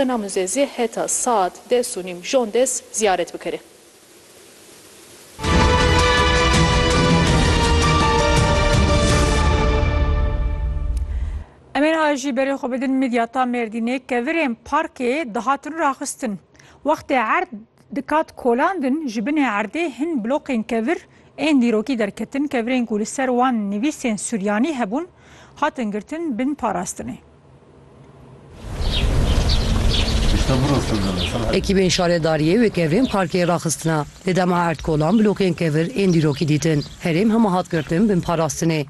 Ina muze zî heta saet des û nîm jon des ziyaret bikere. Em ên a jî berê xwe bidin Midyata Mêrdînê ke virên parkê dihatin raxistin. Wextê erd dikat kolandin ji binê erdê hin bloqên kevir ên dîrokî derketin kevirên ku li ser wan nivîsên suryanî hebûn hatin girtin bin parastinê. Ekîbên şaredariyê wê kevirên parkê raxistina. Di dema erdkolan blokên kevir ên dîrokî dîtin. Herêm hema hat girtin bin parastinê.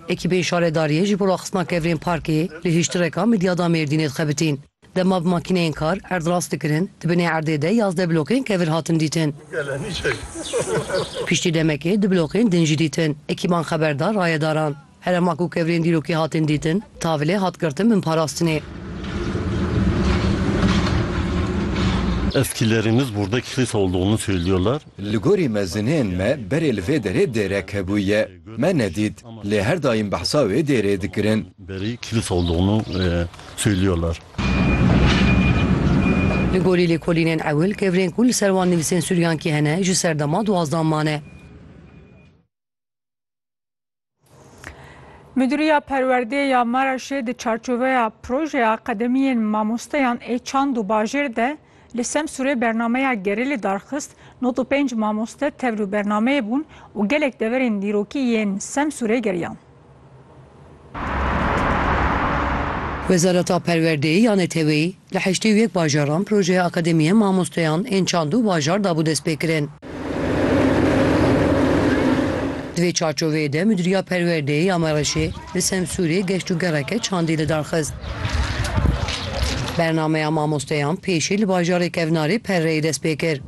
Ekîbên şaredariyê ji bo raxistina kevirên parkê li hiştireka Midyada Mêrdînê dixebitîn. Dema bi makîneyên kar erdrast dikirin, di binê erdê de yazdeh blokên kevir hatin dîtin. Piştî demekê du blokên din jî dîtin. Ekîban xeber da rayedaran. Herema ku kevirên dîrokî hatin dîtin, tavilê hat girtin bin parastinê. Eskilerimiz burda kilisa olduğunu söylüyorlar. Li gorî mezinên me berê li vê derê dêrek hebûye. Me nedît, lê her daîm behsa wê dêrê dikirin. Berî kilisa olduğunu söylüyorlar. Li gorî lêkolînên ewil, kevirên ku li ser wan nivîsên Suryankî hene ji serdema duwazdan mane. Miduriya Perwerdê ya Maraşê di çarçoveya projeya qedemiyên mamosteyan ê çand û bajêr de li Semsûrê bernameya gerê li dar xist, nod û pênc mamoste tevl û bernameyê bûn û gelek deverên dîrokî yên Semsûrê geriyan. Wezareta Perwerdeyê ya Neteweyî Li heştê û yek bajaran projeya Akademiya Mamosteyan ên Çand û Bajar dabû destpêkirin. Di vê çarçoveyê de Mudîriya Perwerdeyê ya Mereşê li Semsûrê geştûgereke çandî lidarxist. Bernameya Mamosteyan pêşî li bajarê kevnarê Perreyê dest pê kir.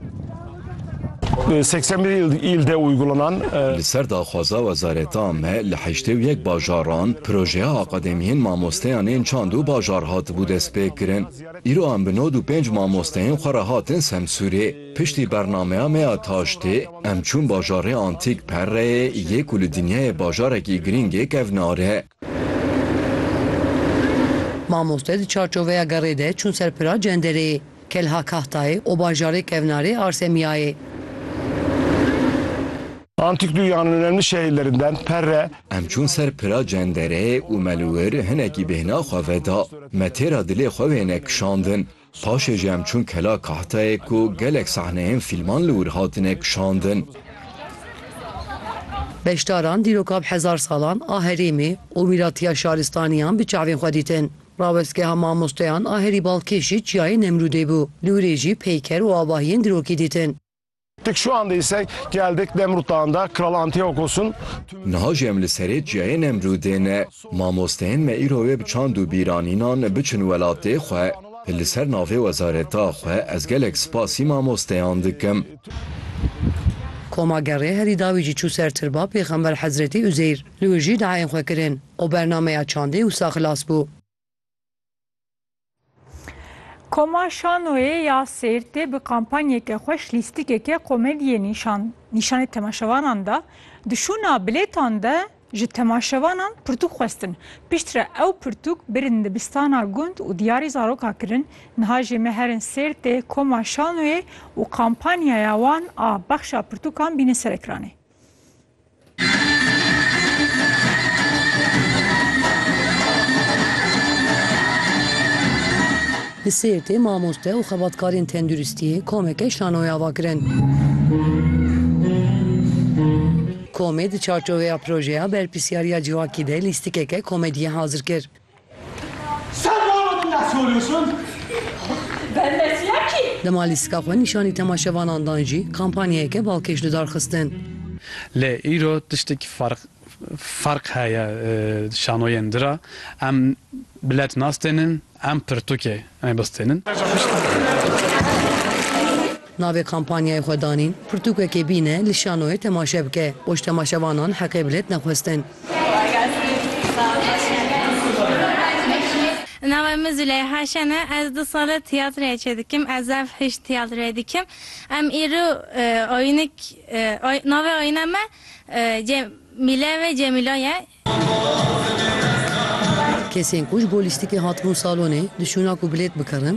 81 îl de uygulanan Li ser daxwaza wezareta me li heştê û yek bajaran projeya akademiyên mamosteyan ên çand û bajar hatibû destpêkirin. Îro em bi nod û pênc mamosteyên xwe re hatin Semsûrê. Piştî bernameya me ya taştê em çûn bajarê antîk Perreyê yê ku li dinyayê bajarekî girîng ê kevnar e. Mamoste di çarçoveya gerê de çûn ser pira cenderê. Kelha Kahtayê û bajarê Kevnarê Arsemiyayê. Antik dünyanın önemli şehirlerinden Perre. Em çûn ser pira cendere û me li wir hinekî bêhna xwe veda. Me têra dilê xwe wêne kişandin. Paşê jî em çûn Kela Kahtayê ku gelek sahneyên fîlman li wir hatine kişandin. Beşdaran dîroka bi hezar salan a herêmê û mîratiya şaristaniyan bi çavên xwe dîtin. Rawestgeha mamosteyan a herî balkêşî Çiyayê Nemrûdê bû. Li Urê jî peyker û avahiyên dirokî dîtin. Dik şu anda ise geldik Nemrut Dağı'nda Kral Antiochos'un Niha jî em li serê Çiyayê Nemrûdê ne. Mamosteyên me îro wê bi çand û bîranînan biçin welatê xwe. Li ser navê wezareta xwe ez gelek spasî mamosteyan dikim. Koma Gerê herî dawî jî çû ser tirba Pêxember Hezretî Uzeyr. Li wir jî diayên xwe kirin. Û bernameya çandê wisa xilas bû. Koma Şanoyê ya Sêrtê bi kampanyeke xweş lîstikeke komediyê nîşan nîşanê temaşevanan da. Di şûna bilêtan de ji temaşevanan pirtûk xwestin. Pişt re ew pirtûk birin dibistana gund û diyarê zaroka kirin. Niha jê me herin Sêrtê, Koma Şanoyê û kampanyaya wan a bexşa pirtûkan bînin ser ekranê. Li Sêrtê mamoste û xebatkarên tenduristiyê komeke şanoyê ava kirin. Komê di çarçoveya projeya berpirsiyariya civakî de lîstikeke komediyê hazir kir. Dema lîstika xwe nîşanî temaşevanan dan jî kampanyayeke balkêş li dar xistin. Lê îro tiştekî ferq heye şanoyên di re. Em bilet nas tênin, em pirtûkê Em ê bistînin. Navê kampanyayê xwe danîn, Pirtûkekê bîne li şanoyê temaşe bike. Poştemaşevanan heqê bi lêt nexwestin. Navê min Züleyha Şen e. Ez du sal e tîyatroyê çê dikim. Ez ev hişt tîyatroyê dikim. Em îro oyînik navê oyîna me Cemîle ve Cemîla ye. Kesên ku ji bo lîstikê hatibûn salonê, di şûna ku bilêt bikirin,